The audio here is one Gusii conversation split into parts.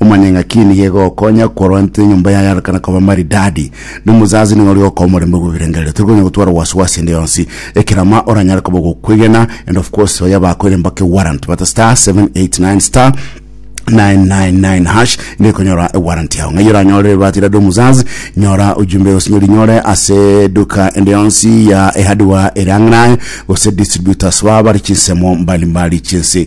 Momanye ng'a ki nigo egokonya korwa intwe enyomba yaye yarekana koba maridadi, na omosaasi nigo ore gokoa omorembe bw'ebirengererio. Tori konya gotwara wasiwasi ende yonsi. Ekerama oranyare koba ogokwegena, and of course baye abakoire mpaka ewarrant bata star 789 star 999 hash nigo ekonyora ewarrant yao. Ng'ai oranyorere ebati rade omosaasi? Nyora ujumbe gose nyorinyore ase eduka ende yonsi ya ehardware ere ang'e naye, gose distributors babo bare chinsemo mbalimbali chinse.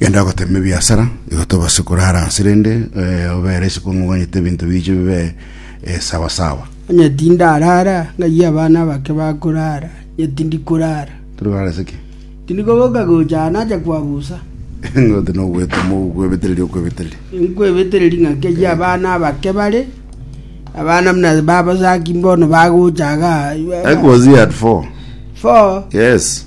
Genda ogoteme ebiasara, igo tobase korara nse rende eh, obere isiko ng'ogonyete ebinto biiche bibe eh, sawa sawa. Onye tindarara, ng'ai abana abake bakorara? Inye tindikorara. Turi korara ase ki? Tindikoboka gocha aa nacha kwabusa. Ngote nogwetoma okwebetereria okwebetereria. Nkwebetereri ng'aki ayio abana abake bare, abana buna babasaki mbono bagochaga. That was year at four. Four. Yes.